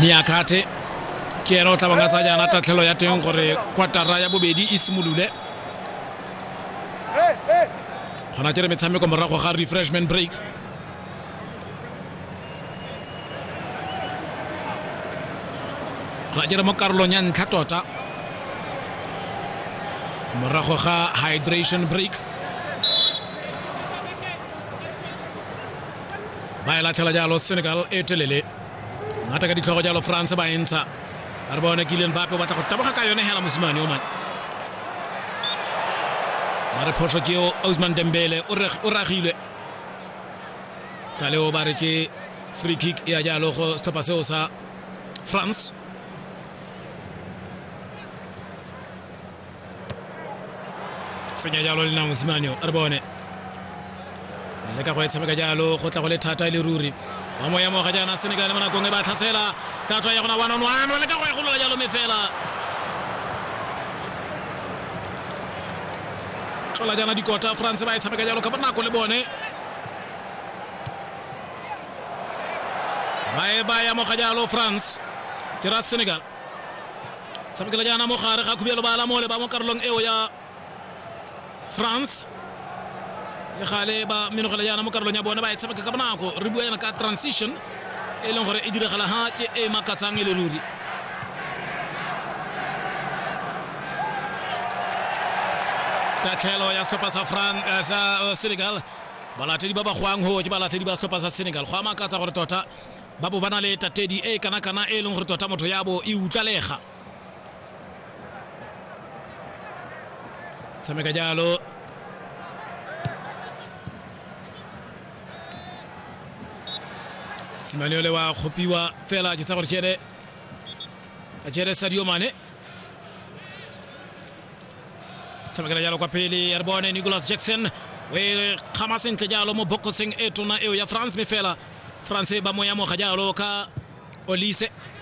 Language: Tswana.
meakate ke ene o tlabanga tsa jaana tatlhelo ya teng gore kwatara ya bobedi e simolole gona ke re metshameko morago ga refreshment break ra dira mo karolong ya ntlha tota morago ga hydration break ba e latlhela jalo senegal e telele ngata ka ditlhogo jalo france ba e ntsha a re bone kileng bape o batla go taboga ka yone hela mosimane o mane mare phoso keo ausman dembele o ragilwe ka leo ba re ke free kick e ya jalo go setlhopha seo sa france tsenya jalo le na mosimane a re bone le ka go e tshameka jalo go tla go le thata e le ruri wa moya moga jaana senegal le mo nakong e ba tlhatsela tla tswa ya gona one on one le ka go e golola jalo me fela tlola jaana dikota france ba e tshameka jalo ka bonako le bone ba e ba ya moga jalo france ke ra senegal tshamekela jaana mo gare ga khubelo ba lamole ba mo karolong eo ya france le gale ba menogela jaana mo karolong ya bone ba e tshameka ka bonako re bua yana ka transition e leng gore e diragala ha ke e makatsang e le ruri tatlhelo ya setlhopha sa france eh, sa eh, senegal balatedi ba ba goang go ke balatedi ba setlhopha sa senegal go a makatsa gore tota ba bo ba na le tatedi e kana-kana e leng gore tota motho ya bo e utlalega tshameka jalo simane ole wa kgopiwa fela ke tsa gore ke ene a jere sadio mane tshamekela jalo kwa pele ya re bone nicholas jackson o e kgama sentle jalo mo bokoseng e tona eo ya france me fela france ba mo yamoga jalo ka olise